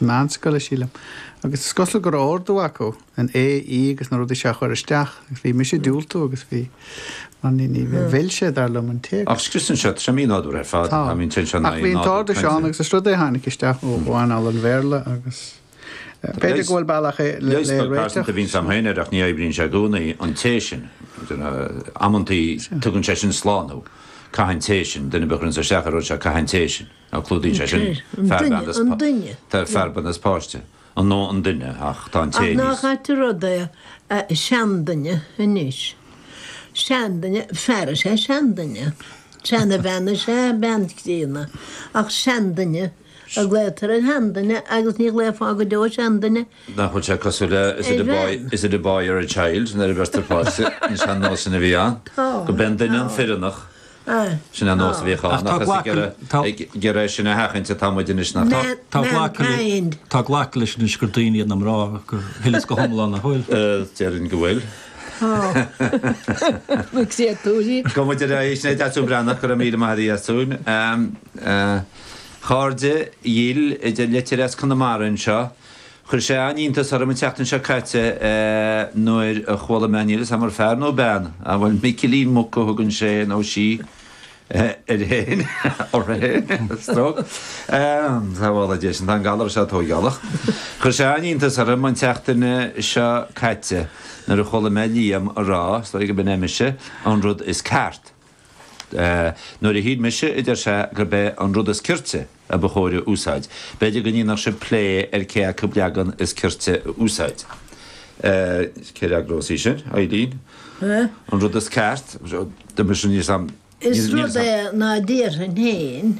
meánscoile, sílim. Agus is cosúil go raibh ordú acu an é í agus na rudaí seo a chur isteach. Agus bhí mise ag diúltú agus bhí, mar ní, ní mhill sé, dar liom, an téacs. Ach scriosann sé rithim nádúrtha ar fad, Tá. bíonn tension ann, Ach bhí an nádúr t-ordú seo ann cainte. agus is rud é a tháinig isteach ó ó anáil an Bhéarla agus eh, b'fhéidir go bhfuil bealach é le, Leigheas le beag pearsanta a bhíonn réiteach. agam féin air ach ní oibríonn sé i gcónaí, an té sin. Amantaí tugann sé sin slánú. Caithfidh an té sin, duine ar bith a chuireann isteach ar an rud seo, caithfidh an té sin. Now clúdaíonn sé sin fear, bean is páiste, an nó an duine, ach tá an té níos. Ach nach ait an rud é, seanduine anois, seanduine, fear is ea seanduine, seanabhean is ea bean chríonna, ach seanduine a ghlaotar ar sheanduine agus ní ghlaofá go deo seanduine ar bhean. Nach bhfuil sé cosúil le is it a boy, is it a boy or a child nuair a bheirtear páiste, an sean-nós sin a bhí ann, go mb'é an duine an fireannach. Sin an nós a bhíodh ann, ach is ag iarraidh sin a sheachaint atá muid anois, nach ea? Tá glactha leis anois gur daoine iad na mná, ach an bhfuil sé go hiomlán, an bhfuil. Déarfainn go bhfuil. Gabhfaidh muid ar aghaidh, sin é Deasún Breathnach, go raibh míle maith agat a Dheasúin. Chairde dhil, a deir litir as Conamara anseo, Chuir sé an-iontas orm an tseachtain seo caite nuair a chuala mé, níl 'fhios a'm ar fear nó bean, a' bhfuil Micilín Muc a thugann sé nó sí air fhéin, uirthi fhéin, stroke, sábhála Dia sinn, tá an galar seo tóigálach, chuir sé an-iontas orm an tseachtain seo caite nuair a chuala mé Liam a' rá, is dóigh go mb'in é mise, an rud is ceart. Nuair a shíl mise, a deir sé, gurb é an rud is cirte a ba chóir a úsáid, b'fhéidir go ndéanfadh sibh plé ar cé acu leagan is cirte a úsáid. Cé a fhreagrós í sin? Eilín? An rud is ceart? Is rud é ná déarfainn féin.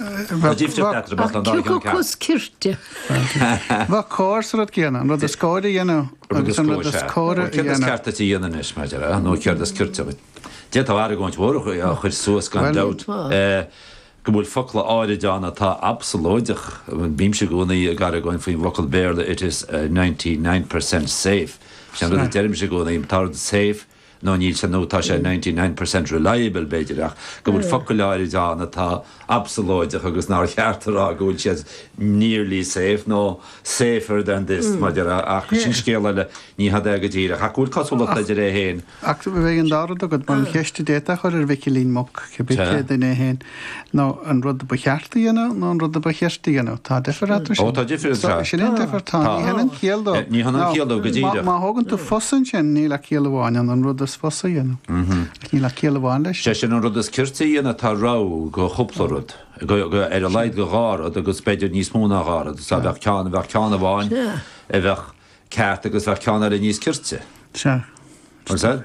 Tá difríocht eatarthu, bheadh an dá cheann ceart. Cé acu is cirte. Bheadh cóir sa rud céanna, an rud is cóir a dhéanamh agus an rud is córa a dhéanamh. Céard is ceart duit a dhéanamh anois, mar a déarfá, nó céard is cirte duit? D'fhéadfá argóint mhór a chur suas, gan dabht, go bhfuil focla áirid ann atá absalóideach. Bímse i gcónaí ag argóint faoin bhfocal Béarla it is ninety nine percent safe. Sin an rud a deirimse i gcónaí, tá rud safe, nó níl sé nó tá sé ninety nine percent reliable, b'fhéidir, ach go bhfuil focail áirid ann atá absalóideach agus nár cheart a rá go bhfuil siad nearly safe nó safer than this, mar a déarfá, ach sin scéal eile, ní hada é go díreach, ach go bhfuil cosúlachtaí idir é féin. Ach bheadh an dá rud agat, mar an cheist a d'fhéadfá a chur ar Mhicilín Muc, cibé cé duine é féin. Nó an rud ba cheart a dhéanamh nó an rud a ba chirte a dhéanamh. Tá difear ann freisin. Ó, tá difear ann freisin. Sin é an difear. Tá. Ní hionann ciall dó. Ní hionann ciall dó go díreach. Má thógann tú fusa ansin, níl ach ciall amháin ann, an rud is fusa a dhéanamh. Ach níl ach ciall amháin leis. Sé sin an rud is cirte a dhéanamh, tá rogha de chúpla rud, ar a laghad de dhá rud agus b'fhéidir níos mó ná dhá rud. Is dá bheadh ceann, bheadh ceann amháin a bheadh ceart agus bheadh ceann eile níos cirte. Sea. An said?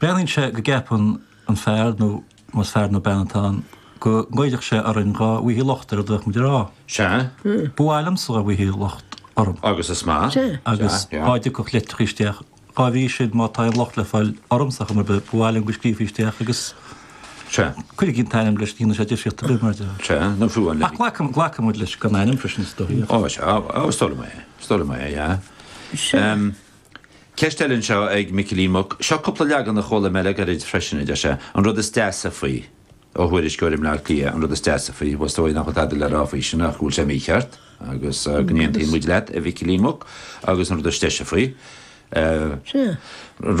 Breathnaíonn sé go gceapann an fear, nó más fear nó bean atá ann, go ngoillfeadh sé orainn dhá bhfaightí locht ar a dtiocfadh muid a rá. Sea. Ba mhaith liomsa dhá bhfaightí locht orm. Agus is maith. Sea. Agus dhá dtiocfadh litreacha isteach. Dhá bhrí sin, má tá aon locht le fáil ormsa am ar bith, ba mhaith liom go scríobfaí isteach agus Sea. cuirfidh an t-ainm leis, ní dhéanann sé difríocht ar bith, mar deartháir. Sea, nó fiú an le. Ach glac, glacfaidh muid leis gan ainm freisin, is dóigh, ach. Ó, sea, ó, ó, is dóigh liom é, is dóigh liom é, yeah. Sea. Ceist eile anseo ag Micilín Muc. Seo cúpla leagan a chuala mé le gairid freisin, a deir sé. An rud is deasa faoi. ó thuairisceoir i mBleá Cliath, an rud is deasa faoi, bhuel is dóigh nach bhfuil tada le rá faoi sin ach go bhfuil sé mícheart agus go n-aontaíonn muid leat, a Mhicilín Muc, agus an rud is deise faoi, an rud.